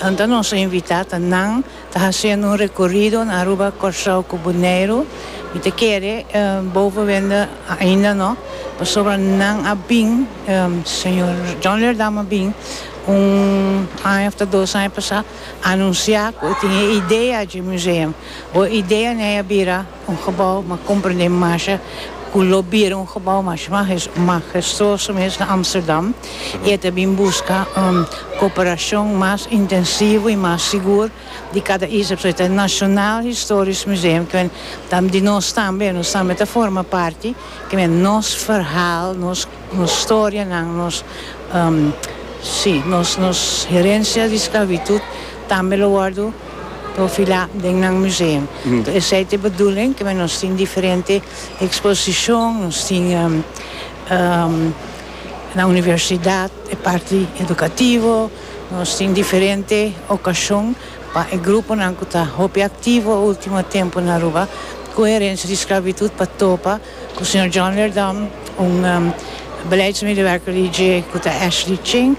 Anta nos a invitá ta nan ta hasiendo un rekorido na Aruba, Kòrsou ku Boneiru. Mi ta kere boven wende ainda no pasobra nan a bin, señor John Lerdam a bin un aña òf ta dos aña pasá anunsiá ku e tin e idea dje museum. Bo e idea n'e a bira. Un gebouw mag comprende masha cu lo bira un gebouw masha magestuoso mes na Amsterdam y e ta bin busca un cooperacion mas intensivo y mas sigur di cada isla. Pasobra e ta National Historisch Museum cu di nos tambe, nos tambe ta forma parti, kimen nos verhaal, nos. Nos historianan, nos, si, nos, nos herencia di sclavitud tambe lo wordo profilá den nan museum. Toh esei ta e bedoeling ke men nos tin diferente exposicion, nos tin na universidad e parti educativo, nos tin diferente ocasion pa e gruponan cu ta hopi activo ultimo tempo na Aruba cu herencia di sclavitud pa topa. Ku señor John Lerdam, un beleidsmedewerker di dje ku ta Ashley Ching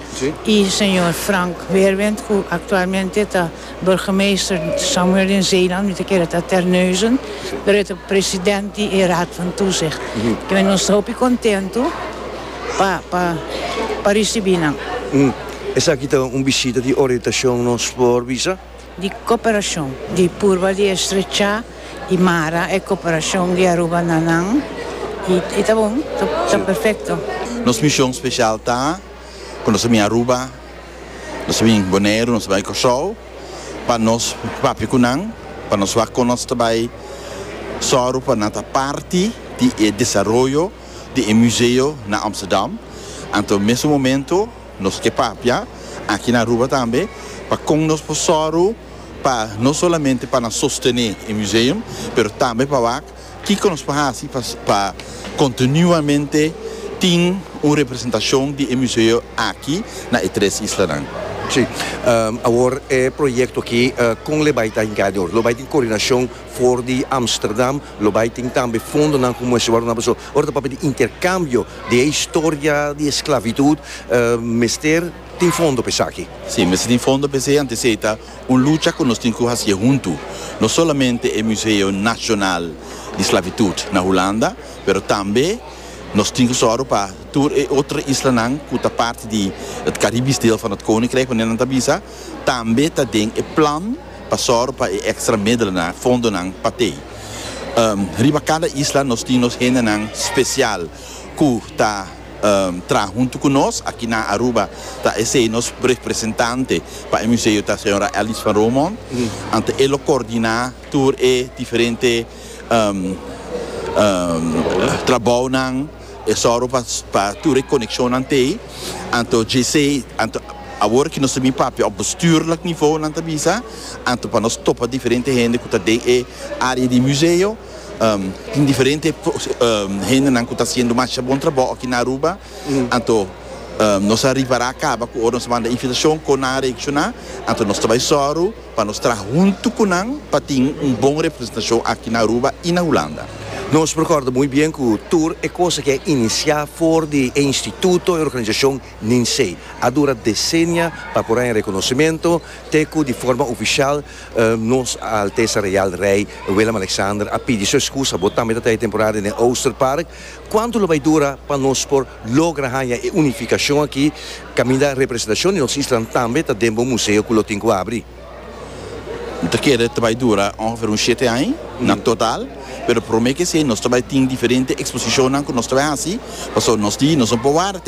i señor Frank Weerwind ku aktualmente ta burgemeester Samuel den Zeeland, mi ta kere ta Terneuzen, pero e ta president di e Raad van Toezicht. Kimen nos ta hopi kontentu pa pa risibi nan. Esaki ta un bishita di orientashon nos por bisa? di cooperacion, di purba di estrechá y mara e cooperacion di Aruba na nan, y ta bon, ta perfecto. Nos mision special ta cu nos a bin Aruba, nos a bin Boneiru, nos a bai Corsou, pa nos papia cu nan, pa nos wak con nos ta bai zorgo pa nan ta parti di e desaroyo di e museo na Amsterdam. Anto, mes un momento. Nos ke papia aki na Aruba tambe pa kon nos por sòru pa no solamente pa nan sostené e museum, pero tambe pa wak kiko nos por hasi pa kontinuamente tin un representashon di e museo aki na e tres islanan. Sí. Awor e proyekto aki kon lo bai ta hinká dor? Lo bai tin koordinashon? For di Amsterdam lo bai tin tambe fondonan ku muestra wòrdu nan paso. Ora ta papia di interkambio di e historia di esklavitud mester tin fondo pa esaki. Si, mester tin fondo pa esei, antes esei ta un lucha ku nos tin ku hasié huntu. No solamente e Museo Nasional di Sklavitud na Hulanda, pero tambe nos tin ku sòru pa tur e otro islanan ku ta parti di e karibis deel van het koninkrijk, wanneer nan ta bisa tambe ta den e plan. pa sòru pa e èkstra medelenan, fondonan pa tei. Riba kada isla nos tin nos hendenan spesial ku ta traha huntu ku nos. Aki na Aruba ta esei nos representante pa e museo ta señora Alice van Romont, anto e lo kordiná tur e diferente. trabounan, e sòru pa tur e konekshonnan te. Anto dje sei, anto awor ku nos ta bin papia òf bestuurlijk nivou nan ta bisa, anto pa nos topa diferente hende ku ta den e área di museo. Tin diferente hendenan ku ta hasiendo masha bon trabou aki na Aruba. Anto nos a ripará kaba ku ora nos a manda invitashon kon nan a reakshoná. Anto nos ta bai sòru. Pa nos traha huntu cu nan pa tin un bon representacion aki na Aruba y na Hulanda. Nos recorda muy bien cu tur e cosa que a inicia for di e instituto, e organizacion NINSEE, a dura decennia pa por haña reconocimento, te cu di forma oficial Nos A Altesa Real Rey Willem-Alexander a pidi su excusa, bo tambe ta trae e temporada den Oosterpark, cuantu lo bay dura pa nos por logra haña e unificacion aki caminda representacion di nos isla tambe ta den bo museo cu lo tin cu abri. Bo ta kere ta bay dura ongeveer un shete aña na total, pero prome ke esey nos ta bay tin diferente exposicionnan cu nos ta bay haci, pasobra nos di nos no por warda te aki.